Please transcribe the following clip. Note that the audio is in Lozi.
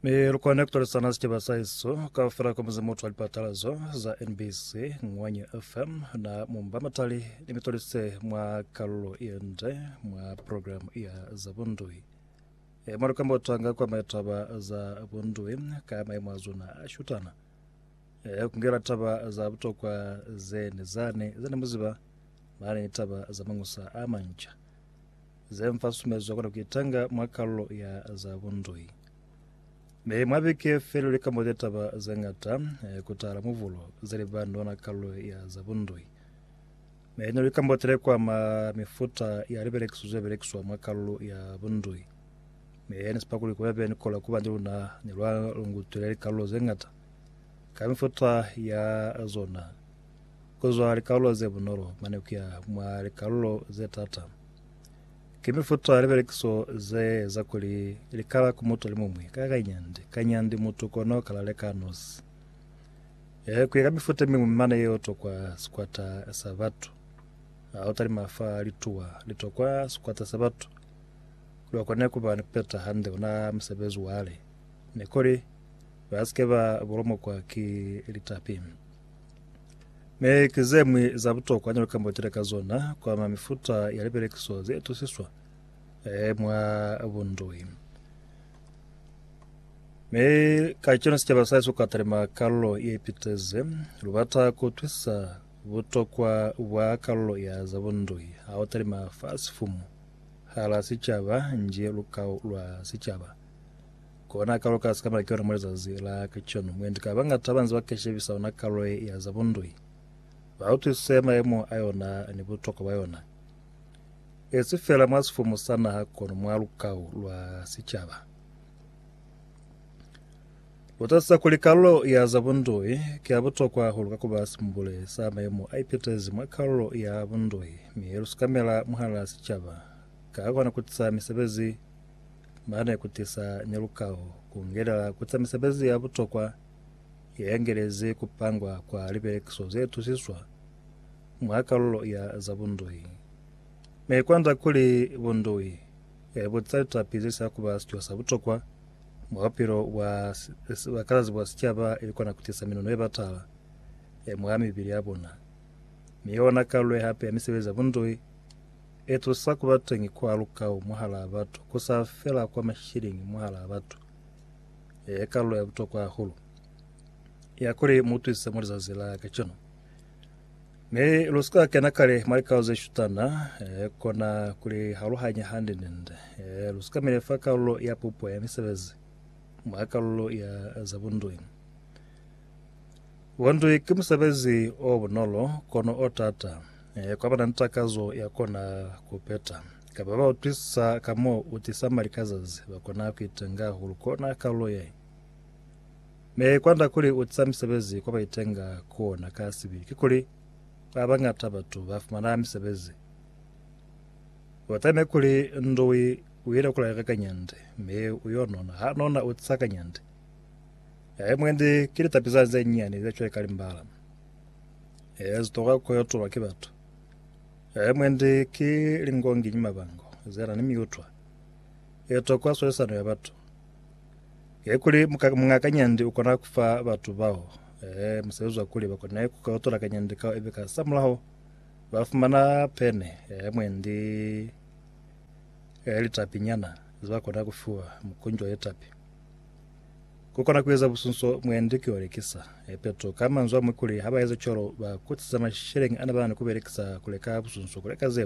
Mi lukone kutolisana sicaba sa isu kaufela kwa muzi mutwa lipatalazo za NBC Ngwanyi FM na mumba matali ni mitolise mwa kalulo iende mwa programu ya za bundui e mwa lukamba utanga kwa maitaba za bundui ka maimo a zona a shutana e kungela taba za butokwa zene zane zene muziba mane taba za mangusa a manca Ze mfa susumezo ya kona ku itanga mwa kalulo ya za bundui. Mi mwa biki feli li ka mbote taba ze ngata ku tahala mubulo ze li ba ni ona kalulo ya za bundui. Mi ne lu ka mbotele kwa ma mifuta ya libelekiso ze belekiswa mwa kalulo ya bundui. Mi ne si pa kuli kube be ni kola kuba ni luna ni lwa lungutwile likalulo ze ngata ka mifuta ya zona. kuzwa likalulo ze bunolo mane kuya mwa likalulo ze tata. Ki mifuta ya libelekiso ze eza kuli likala ku mutu alimuñwi ka kanyandi kanyandi mutu kono kala leka nosi. E, kuya ka mifuta miñwi mane yeo tokwa sikwata sa batu. Ha u talima fa lituwa litokwa sikwata sa batu, lwa kone kuba ni kupeta hande ona musebezi wale, ni kuli ba sike ba bulomokwa ki litapi. Ne ki ze mwi za butokwa ne lu ka mbotela ka zona ku ama mifuta ya lipelekiso ze itusiswa eh, mwa bundoi. Mi kacenu sicaba sa Yesu ka talima kalulo ye ipiteze. Lu bata ku utwisisa butokwa bwa kalulo ya za bundoi ha u talima fa sifumu hala sicaba nji lukau lwa sicaba. Kona kalo ka sikamela ki yona mwa lizazi la kacenu. Mwendi ka bañata banze ba keshebisa yona kalo ye ya za bundui. Ba utwisise mayemo a yona ni butokwa bwa yona. Esi fela mwa sifumu sa naha kono mwa lukau lwa sicaba. Lutasisa kuli kalo ya za bundui ki ya butokwa hahulu ka kuba simbule sa mayemo a ipitezi mwa kalo ya bundui mi ye lu sikamela mwahala sicaba ka kona kutisa misebezi ba ne ku tisa nyalukaho ku ngelela ku za misebezi ya butokwa ye engelezi ku pangwa kwa libelekiso ze tusiswa mwa kalulo ya za bundui. Ne kwanda kuli bundui e buca litapi ze sa kuba sico sa butokwa mwa bupilo bwa bakalazi bwa sicaba ili kona ku tisa minono ye batala e mwa mibili ya bona, mi yona kalulo ye hape ya misebezi ya bundui E tusa ku ba teñi kwa lukau mwahalaa batu, ku sa fela kwa masheleñi mwahalaa batu. E kalulo ya butokwa hahulu ya kuli mu twise mwa lizazi la kacenu. Mi lu sika kena kale mwa likau ze shutana, e kona ku li haluhanya hande nende. E lu sika mile fa kalulo ya pupo ya misebezi mwa kalulo ya za bundui. Bundui ki musebezi o bunolo, kono o tata. Eh, kwa bana ni takazo ya kona kupeta. Kapa ba utwisisa ka mo u tisa mali ka zazi, ba kona kuitenga hahulu kona kalulo ye. Me kwanda kuli u tisa misebezi kwa baitenga kona ka sibi, ki kuli ba bangata batu ba fumana misebezi. Wa taime kuli ndui u ile kula reka kanyande, me u yo nona, ha nona u tisa kanyande. Ya emwendi ki litapiza ze nyani ze cweka limbala. Ee, zitoka ku yo tulwa ki batu. Ee, mwendi ki lingongi ni mabango ze na ni miutwa ye tokwa swalisano ya batu. Ee, kuli muka- muñ'a kanyandi u kona ku fa batu bao ee, musebezi wa kuli ba kone ku kautula kanyandi kao ibe ka samulaho ba fumana pene ee, mwendi ee, litapinyana ze ba kona ku fiwa, mukunji wa litapi. Ku kona ku eza busunso mwendi ki olekisa. Epeto ka manzwi a mwi kuli, haba ezi cwalo, ba kutisa masheleñi ana ba na ni ku belekisa ku leka busunso ku leka ze